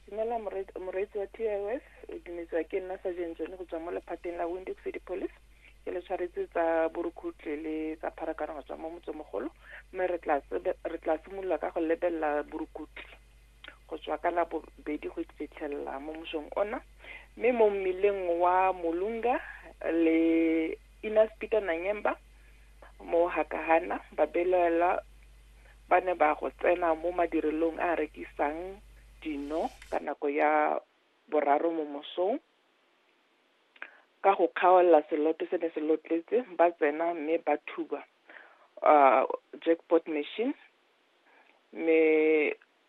dumela moreetsi wa t i s o dumetsiwa ke nna sa jeng tsone go tswa mo lephateng la windex city police ke le tshwaretse tsa borukhutle le tsa pharakano go tswa mo motsomogolo mme re tla simolola ka go lebelela borukhutle go tswa ka la bobedi go fitlhelela mo mosong ona mme mo mmileng wa molunga le inas peter nanyemba mo hakahana ba belaela ba ne ba go tsena mo madirelong a a rekisang dino ka nako ya boraro mo mosong ka go kgaolela seloto se ne se lotletse ba tsena mme ba thuba uh, jackpot machine mme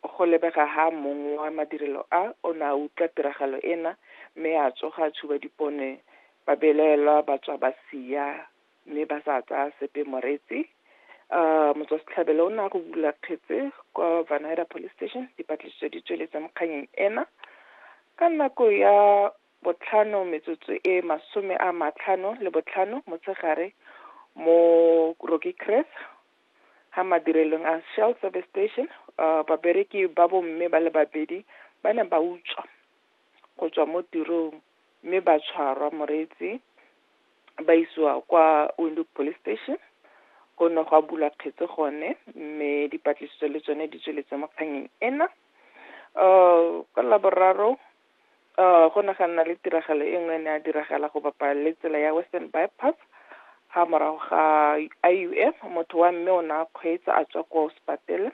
go lebega ha mong wa madirelo a o ne a utlwa tiragalo ena mme a tsoga a tshuba dipone ba belaelwa ba tswa ba sia mme ba sa tsaya sepe moreetsi um motswasetlhabelo o ne a go bula kgetse kwa vanira police station dipatlisiso di tsweletse mo kganyeng ena ka nako ya botlhano metsotso e masome a matlhano le botlhano motshegare mo rocky cress ga madirelong a shell service station um babereki ba bomme ba le babedi ba ne ba utswa go tswa mo tirong mme ba tshwarwa moreetsi ba isiwa kwa Windhoek Police Station go ne go a bulwa kgetse gone mme dipatlisiso le tsone di tsweletse mo kganyeng ena um ka laboraro um go ne ga nna le tiragalo e nngwe e ne ya diragala go bapa le tsela ya western bypass ga morago ga i u m motho wa mme o ne a kgweetsa a tswa ko sepatele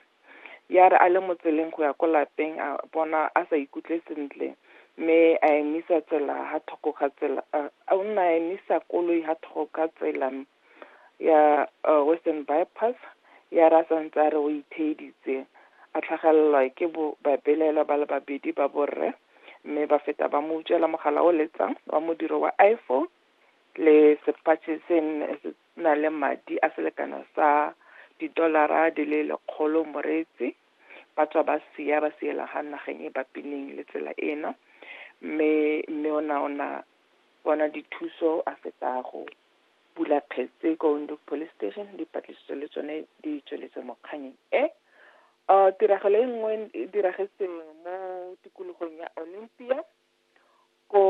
ya re a le mo tseleng go ya ko lapeng a bona a sa ikutlwe sentle mme a emisa tsela ha thoko ga tsela a nna a emisa koloi ha thoko ga tsela ya western bypass ya re a santse a re o itheeditse a tlhagelelwa ke babelaelwa ba le babedi ba borre mme ba feta ba mo utswela mogala o letsang wa modiro wa iphone le sepatšhe se na le madi a selekano sa didolara di le lekgolo moreetsi ba tswa ba sia ba siela ga nageng e bapineng le tsela eno mme mme o na ona bona dithuso a feta go bula kgetse ko Windhoek Police Station dipatlisiso le tsone di tsweletse mo kganyeng e tiragalo e nngwe e diragetseng mo tikologong ya Olympia ko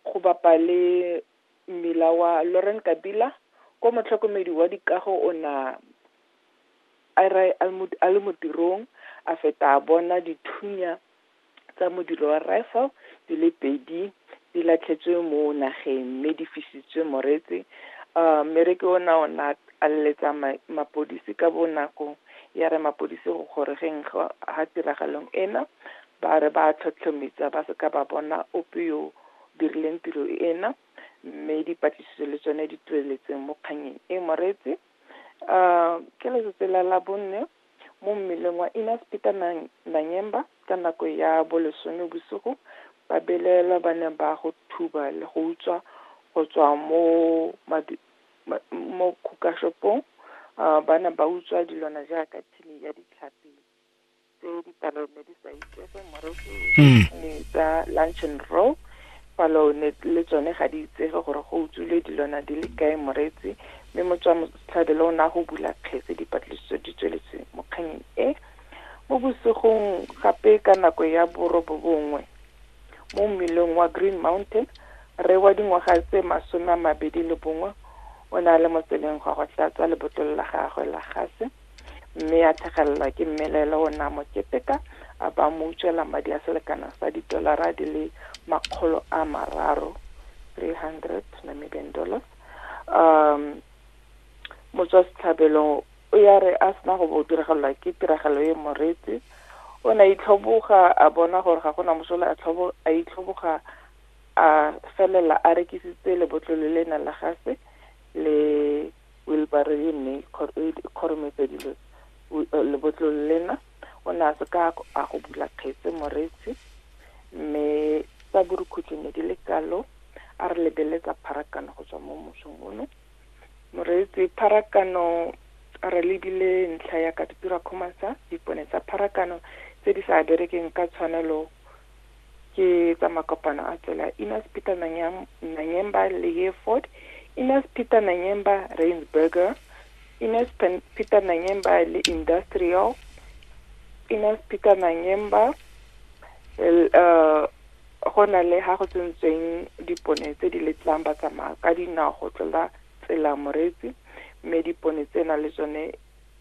go bapa le mmila wa Lauren Kabila ko motlhokomedi wa dikago o na a re a le mo tirong a feta a bona dithunya tsa modiro wa rifle di le pedi di latlhetswe mo nageng mme di fisitswe moretse um mmereke o na o na a leletsa mapodisi ka bonako ya re mapodisi go gorogeng ga tiragalong ena Ba re ba a tlhotlhomitsa ba se ka ba bona ope yo o dirileng tiro ena mme dipatlisiso le tsone di tsweletseng mo kganyeng e. Moreetsi, Ke letsatsi la Labone mo mmeleng wa Innas Peter Nanyemba ka nako ya bolesome bosigo ba belaelwa ba ne ba go thuba le go utswa go tswa mo mo khukashopong ba ne ba utswa dilwana jaaka thini ya ditlhapi. tse dipalo ne di sa itsege moreki mm. ne tsa lunch and roll palo ne le tsone ga di itsege gore go utswile dilwana di le kae moretsi mme motswa motlhabelo o ne a go bula kgetse dipatlisiso di tsweletse mokganyeng e mo bosigong gape ka nako ya borobo bongwe mo mmeleng wa green mountain re wa dingwaga tse masome a mabedi le bongwe o ne a le mo tseleng gwa go tlatsa lebotolo la gagwe la gase mme a thegelelwa ke mmelaele o ne a mo keteka a ba mo utswela madi a selekano sa didolara di le makgolo a mararo 300 Namibian dollars um motswa setlhabelong o ya re a sena go bo diragalelwa ke tiragalo e moreetsi o ne a itlhoboga a bona gore ga gona mosola a itlhoboga a felela a rekisitse lebotlolo le ne la gase le wheelbarrow e nne e ikgorometse dilo lebotlolo lena o ne a se ka a go bula kgetse moretsi mme tsa borukhutso ne di le kalo a re lebeletsa pharakano go tswa mo mosong ono moreetsi pharakano re lebile ntlha ya ka dipira khomasa dipone tsa pharakano tse di sa berekeng ka tshwanelo ke tsa makopano a tsela Enos Peter Nanyemba le Hereford Enos Peter Nanyemba Rainsburger Enos Peter Nanyemba le Industrial Enos Peter Nanyemba uh, go na le ga go tsentsweng dipone tse di letlang ba tsamaya ka dinao go tlola tsela moretsi mme dipone tsena le tsone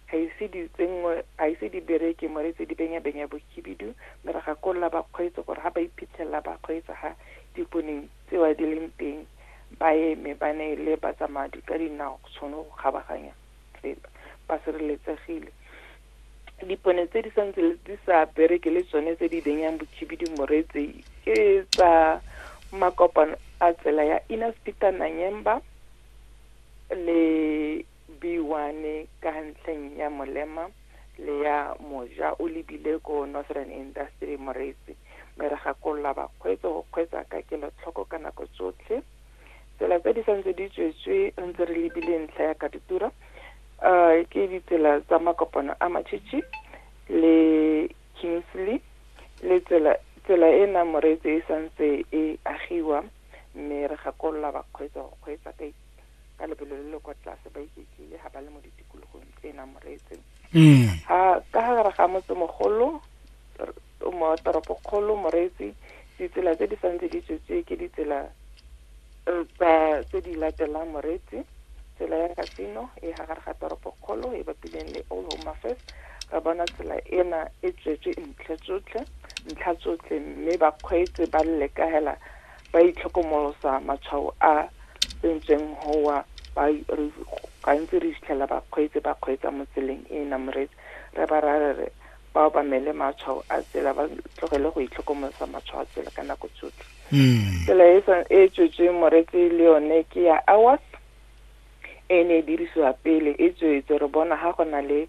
ga ise di tsenngwe ga ise di bereke mo re tse di benyabenya bokhibidu mme re gakolola bakgweetsi gore ga ba iphitlhelela ba kgweetsa ga dikoneng tsewa di leng teng ba eme ba ne le batsamadi ka dinao go tshwane go kgabaganya tsela ba sireletsegile dipone tse di santse di sa bereke le tsone tse di benyang bokhibidu moretse ke tsa makopano a tsela ya Inner Speaker Nanyemba le Biwane ka ntlheng ya molema le ya moja o lebile ko Northern Industry Moretsi mme re gakolola bakgweetso go kgweetsa ka kelotlhoko ka nako tsotlhe. Tsela tse di santse di tswetswe re ntse re lebile ntlha ya katutura um ke ditsela tsa makopano a matšhitšhi le kingsley le tsela tsela e nang moreetse e santse e agiwa mme re gakolola bakgweetsa go kgweetsa ka ka lebelo le le kwa tlase ba iketlile ga ba le mo ditikologong tse e nang moreetse mm. a ka gare ga motse mogolo mo toropokgolo moreetsi ditsela tse di santse di tswetswe ke ditsela eh, tsa tse di latelang moreetsi tsela ya kasino e ga gare ga toropokgolo e bapileng le old home affairs re bona tsela ena e tswetswe ntlha tsotlhe ntlha tsotlhe mme bakgweetsi ba lelekagela ba itlhokomolosa matshwao a tsentsweng gowa ba gantsi re fitlhela bakgweetsi ba kgweetsa mo tseleng e e namoretse re ba rarere ba obamele matshwao a tsela ba tlogele go itlhokomolosa matshwao a tsela ka nako tsotlhe hmm. tsela e e tswetsweng moretse le yone ke ya awas e e ne e dirisiwa pele e tswetswe, re bona ga go na le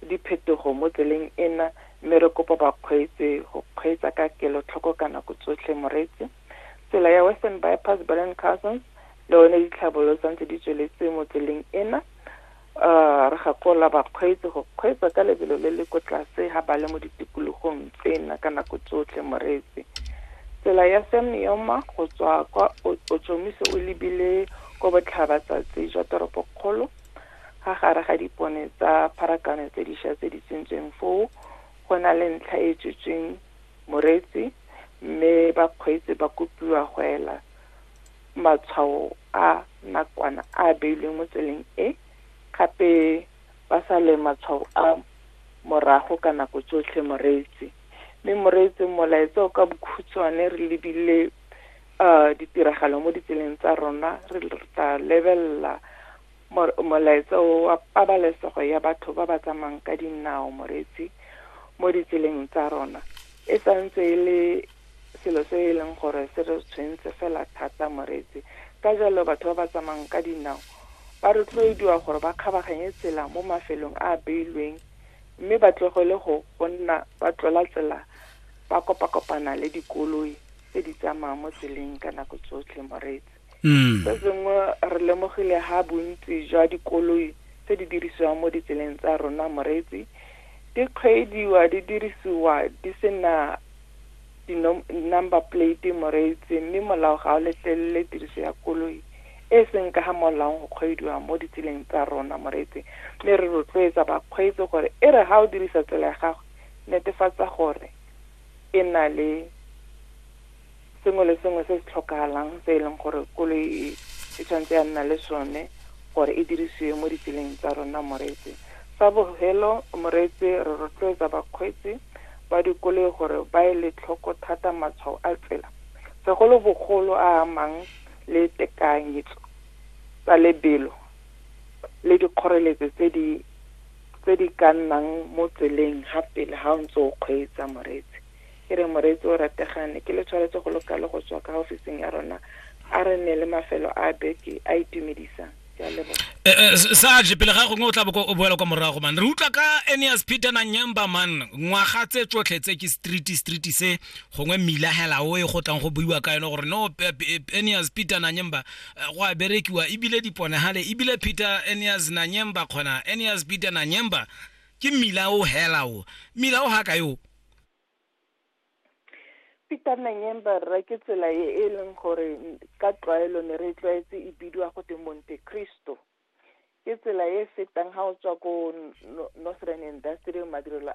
diphetogo mo tseleng ena mme re kopa bakgweetsi go kgweetsa ka kelotlhoko ka nako tsotlhe. Moreetsi, Tsela ya Western Bypass Berlin Cousins le one ditlhabolo sa ntse di tsweletse mo tseleng ena. Uh, re gakolola bakgweetsi go kgweetsa ka lebelo le le ko tlase ga ba le mo ditikologong tsena ka nako tsotlhe. Moreetsi, Tsela ya Sam Neoma go tswa kwa Ochomise o lebile ko botlhabatsatsi jwa toropokgolo, ga gare ga dipone tsa pharakano tse disha tse di tsentsweng foo, go na le ntlha e tswetsweng moretsi, mme bakgweetsi ba kopiwa go ela matshwao a nakwana a a beilweng mo tseleng e, gape ba sale matshwao a morago ka nako tsotlhe moreetsi. Mme moreetsi, molaetsa o ka bokhutshwane re lebile uh, ditiragalo mo ditseleng tsa rona re tla lebelela molaetsa wa pabalesego ya batho ba ba tsamayng ka dinao moreetsi mo ditseleng tsa rona e santse e le selo se e leng gore se re tshwentse fela thata moreetsi ka jalo batho ba ba tsamayng ka dinao ba rotloediwa gore ba kgabaganye tsela mo mafelong a a beilweng mme ba tlogele go go nna ba tlola tsela ba kopakopana le dikoloi tse di tsamayang mo tseleng ka nako tsotlhe moreetsi mm. se sengwe re lemogile ha bontsi jwa dikoloi tse di dirisiwang mo ditseleng tsa rona moreetsi di kgweediwa di dirisiwa di sena di-number plate moreetsi mme molao ga o letlelele tiriso ya koloi e seng ka ga molaong go kgweediwa mo ditseleng tsa rona moreetsi mme re rotloetsa bakgweetsi gore e re ga o dirisa tsela ya gago netefatsa gore e na le sengwe le sengwe se se tlhokagalang se e leng gore koloi e e tshwanetse ya nna le sone gore e dirisiwe mo ditseleng tsa rona moreetse sa bogelo moreetse re rotloetsa bakgweetsi ba dikoloi gore ba e le tlhoko thata matshwao a tsela segolobogolo a amang le tekanyetso tsa lebelo le dikgoreletso tse di tse di ka nnang mo tseleng ga pele ga o ntse o kgweetsa moreetsi ke re moreetsi o rategang ne ke le tshwanetse go loka le go tswa ka ofising ya rona a re ne le mafelo a beke a itumedisang ke a leboga Eh, eh, s- sarge pele ga gongwe o tla boko o boela kwa morago man re utlwa ka aneas peter na nyemba man ngwaga tse tsotlhe tse ke street street se gongwe mmila hela o e go tlang go buiwa ka yone gore no Pe- Pe- aneas peter na nyemba eh, go a berekiwa ebile diponagale ebile peter enias nanyemba kgona enias peter nanyemba ke mmila o hela o mmila o ga ka yo peter nanyemba rra ke tsela e e leng gore ka tlwaelo ne re tlwaetse e bidiwa go te monte cristo ke tsela e fetang ga o tswa ko northern industrial madirelo